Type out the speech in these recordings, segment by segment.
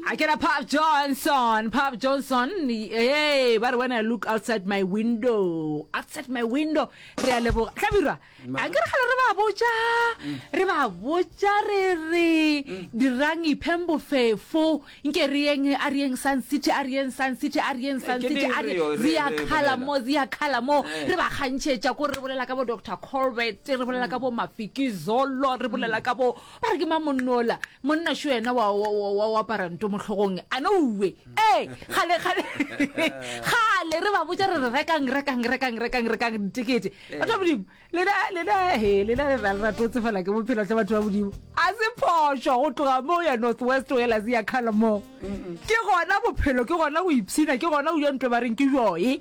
a ke ra pop johnson pop johnson ee ba re when i look outside my window outside my window re a leboga tlabirwa a ke re gale re ba botsa re ba botsa re re dirang ipheng bofefo nke re yeng a re yeng sun city a re yeng sun city a re yeng sun Ke city a re re- re ya re- re khala bolela. mo re ya khala mo Eh. re ba kgantšhetša ko re bolela ka bo dr colbert re bolela ka bo mafikizolo re bolela ka bo ba re ke mang monno ola monna šo yena wa wa- wa- wa- wa apara nto mo hlogong a no uwe ee gale gale gale re ba botsa re re rekang rekang rekang rekang rekang ditekete batho ba modimo lena lena he lena le ra le rato tsefala ke bophelo tle batho ba modimo a se phošo go tloga mo ya north west o ela se ya kgala moo ke gona bophelo ke gona go ipshina ke gona go ja ntlo ba reng ke joe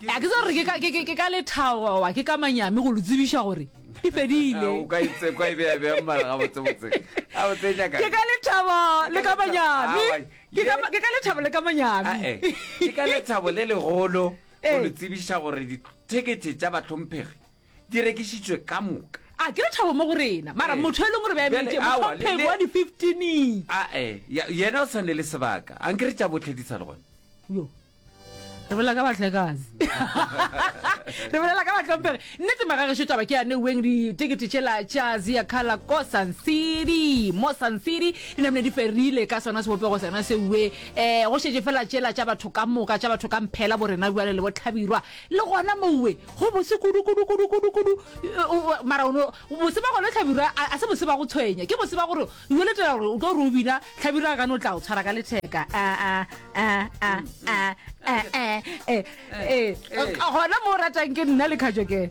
A ke tsa gore ke ka, ke, ke, ke ka lethabo goba ke ka manyami go le tsebiša gore e fedile. O ka itse kwa e be ya be mara ga botse botse. A o tse nyaka. Ke ka lethabo le ka manyami. Ke ka ke ka lethabo le ka manyami. A e. Ke ka lethabo le legolo go le tsebiša gore di ticket tša batlhomphegi di rekišitšwe ka moka. A ke lethabo mo go rena. Mara motho e leng gore ba emetše motlhomphegi wa di 15. A e. Yena o sane le sebaka. Ankere tša bohle di sa le gona. Yo. re bolela ka batlekane re bolela ka batlhompege nnete magageso taba ke yane weng ditekete tšela tša zia kala ko sun city mo sun city di namne di ferile ka sona sebopego sena seue um go šetse fela tšela tša batho ka moka tša batho ka mphela bo rena bjale le botlhabirwa le gona moue go bose kudukudukudukudukudu mara ono bose ba gone tlhabirwa a se bose ba go tshwenya ke bose ba gore ueletela gore o tlo re o bina tlhabirwa a gane o tla o tshwara ka letheka aa Ah, ah, ah, eh, eh, eh, eh. Eh. gona mo o ratang ke nna le kgajokele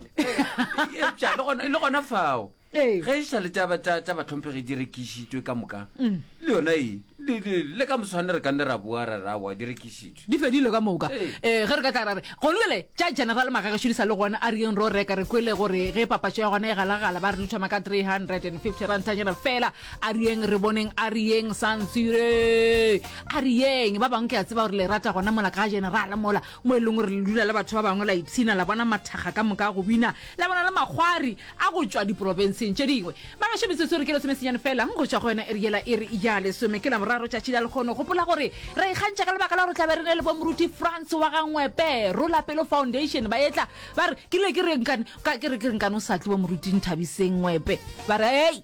Eupša le gona- le gona fao Ee. ge e sa le taba tsa tsa batlhomphegi di rekišitšwe ka moka Mm. le yona e le- le le ka moswane re ka nne ra boa ra ra wa di rekišitšwe di fedile ka moka Ee. um ge re ka tla ra re gone jale tša general magagešo di sa le gona a reng ro reka re kwele gore ge papatšo ya gona e galagala ba re di thoma ka 350 rantanyana fela A re yeng re boneng, a re yeng Sansire, a re yeng. Ba bangwe ke a tseba gore le rata gona mola ka generala mola mo e leng gore le dula le batho ba bangwe la ipshina la bona mathakga ka moka go bina la bona le makgwari a go tšwa diporofenseng tše dingwe. Bagešo metsotso re ke lesomesenyane fela go tšwa go yona e re yela e re ya lesome ke Laboraro tšatši la lekgono. Gopola gore ra ikgantšha ka lebaka la gore tlabe re ne le bo Moruti Frans wa ga Ngwepe, Rola Pelo Foundation ba etla ba re ke ile ke re nkane ka ke re ke re nkane o sa tle bo Moruti Nthabiseng Ngwepe ba re hei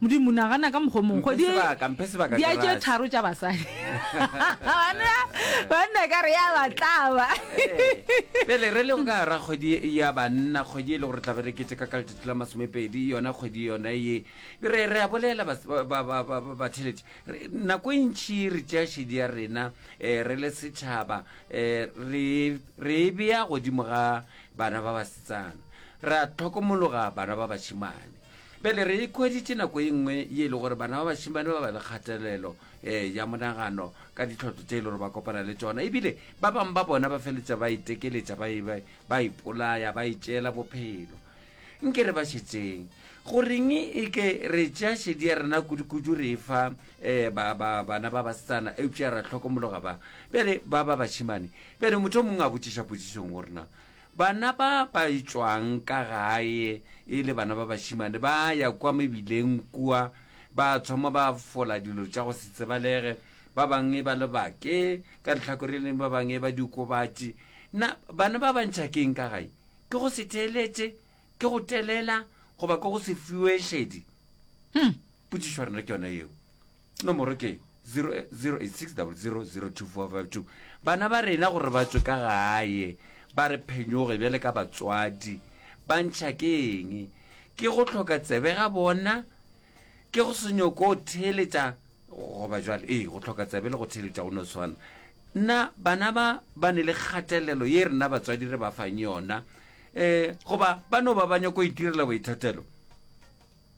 modimo nagana ka mokgwa mongwe Mphe sebaka, mphe sebaka, di a tše garage. tharo tša basadi banna banna ka re ya batlaba pele re le go ka gara kgwedi ye- ya banna kgwedi e le gore tla be re keteka ka letšatši la masomepedi yona kgwedi yona ye re re a bolela bas- ba- ba- ba- ba- ba- batheletši Re- nako e ntšhi re tšea šedi ya rena um re le setšhaba um re re e bea godimo ga bana ba basetsana ra tlhokomologa bana ba bašimane Bjale re ikhweditše nako e nngwe ye e le gore bana ba bašimane ba ba le kgatelelo um ya monagano ka ditlhoto tše e le gore ba kopana le tsona ebile ba bangwe ba bona ba feletša ba itekeletša ba e- ba- ba ipolaya ba itšeela bophelo nke re ba šetseng goreng e ke re tšea šedi ya rena kudukudu re e fa um ba- ba- bana ba basetsana eupša ra tlhokomologa ba bjale ba ba bašimane bjale motho o mongwe a botšiša potšišong gorena Bana ba ba tšwang ka gae e le bana ba bašemane ba ya kua mebileng kua, ba thoma ba fola dilo tša go se tsebalege, ba bangwe ba le bake ka lehlakore le lengwe, ba bangwe ba diokobatši. Na bana ba ba ntšha ke'ng ka gae? Ke go se theeletše? Ke go telela? Goba ke go se fiwe šedi? Hum! Potšišo ya rena ke yona yeo. Nomoro ke 086000245 Bana ba rena gore ba tswe ka gae ba re phenyoge bjale ka batswadi ba ntšha ke eng? Ke go tlhoka tsebe ga bona? Ke go se nyoko go theeletša goba jwale? Ee, go tlhoka tsebe le go theeletša go no swana. Nna bana ba ba ne le kgatelelo ye rena batswadi re ba fang yona um goba ba no ba ba nyoko itirela boithatelo?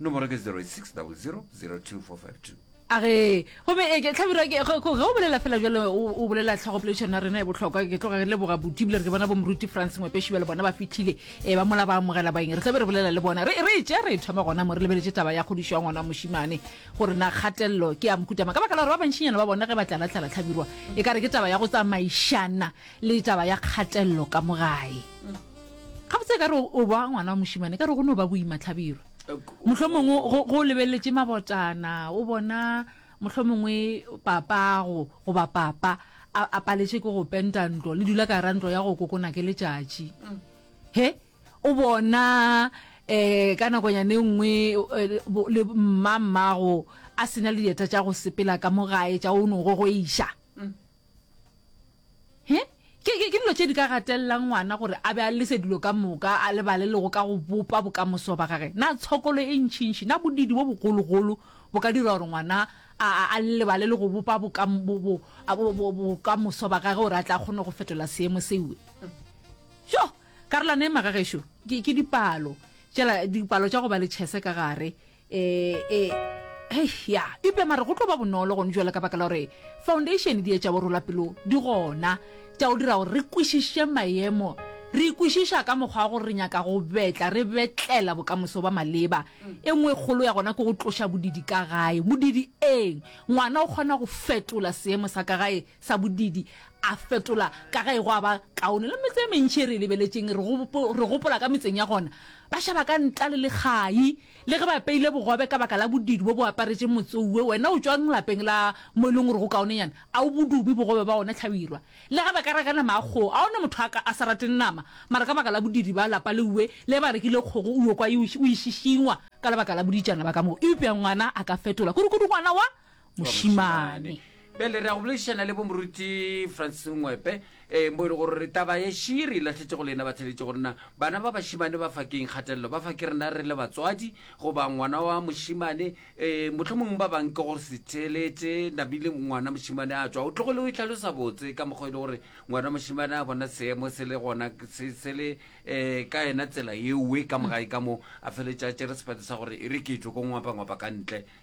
Nomoro ke 06000245 2. A ge, gomme e ke, Hlabirwa, ke, ge, ge o bolela fela bjalo, o, o bolela tlhagopoledišano ya rena ya bohlokwa. Ke tloga ke leboga Buti, ebile re ke bona bomoruti Frans Ngwepeši bjale bona ba fihlile, e, ba mola ba amogela baeng. Re tla be re bolela le bona. Re, re e tšea, re e thoma gona mo, re lebeletše taba ya kgodišo ya ngwana wa mošemane, gore na kgatelelo ke ya mohuta mang, ka baka la gore ba bantšinyana ba bona ge ba tlalatlala, Hlabirwa, e ka re ke taba ya go tsamaišana le taba ya kgatelelo ka mo gae. ga botse ka re o ba ngwana wa mošimane ka re go ne o ba boima tlhabirwa motlho mongwe go lebeletse mabotana o bona motlho mongwe papago goba papa a paletse ke go penta ntlo le dula ka ra ntlo ya go kokona ke letšatši mm. he o bona um ka nakonyane nngwe eh, le mmammago a sena le dieta tša go sepela ka mogae tša o neng go go iša mm. He, ke, ke, ke dilo tše di ka gatelelang ngwana gore a be a lese dilo ka moka, a lebale le go ka go bopa bokamoso ba gage. Na tshokolo e ntšintši, na bodiidi bo bogologolo bo ka dira gore ngwana a, a, a lebale le go bopa boka, bo, bo, a, bo, bo, bokamoso ba gage gore a tle a kgone go fetola seemo seo? Yo! Karolwana e magagešo ke, ke dipalo. Tšela dipalo tša go ba le tšhese ka gare. ee e hei ya eupša mare go tlo ba bonolo gone jalo ka baka la gore foundation di etša borola pelo di gona tša go dira gore re kwešiše maemo re ikwešiša ka mokgwa wa gore re nyaka go betla re betlela bokamoso ba maleba e nngwe kgolo ya gona ke go tloša bodidi ka gae bodidi eng ngwana o kgona go fetola seemo sa ka gae sa bodidi a fetola ka gae go a ba kaone le metse e mentšhi e re e lebeletseng re gopola ka metseng ya gona ba šaba ka nta le lekgai Le ge ba apeile bogobe ka baka la bodidu bo bo aparetšeng motse owe, wena o tšwang lapeng la mo e leng gore go kaonenyana a o bo dubi bogobe ba gona, hlabirwa? Le ge ba ka reka nama ya kgogo, a go na motho a ka a sa rateng nama, mara ka baka la bodidi ba lapa le owe le ba rekile kgogo owe kwa e o e šišingwa ka lebaka la boditšana ba ka moo. Eupša ngwana a ka fetola, kudukudu ngwana wa mošimane bjale re ya go boledišana le bomoruti francis ngwepe um eh, bo e le gore re taba ye širi latlhetse go lena ba theletše go nna bana ba bašimane ba fakeng kgatelelo ba fa ke rena re le batswadi goba ngwana wa mošimane um motlho mongwe ba bang ke gore se theletše nabile ngwana mošimane a tswa o tlogo le o itlhalosa botse ka mokgwa e le gore ngwana mošimane a bona seemo se le gona se le um ka yena tsela eoe ka mogae ka moo a feletša tšere sepate sa gore e re ke tlo ko ngwapa ngwapa ka ntle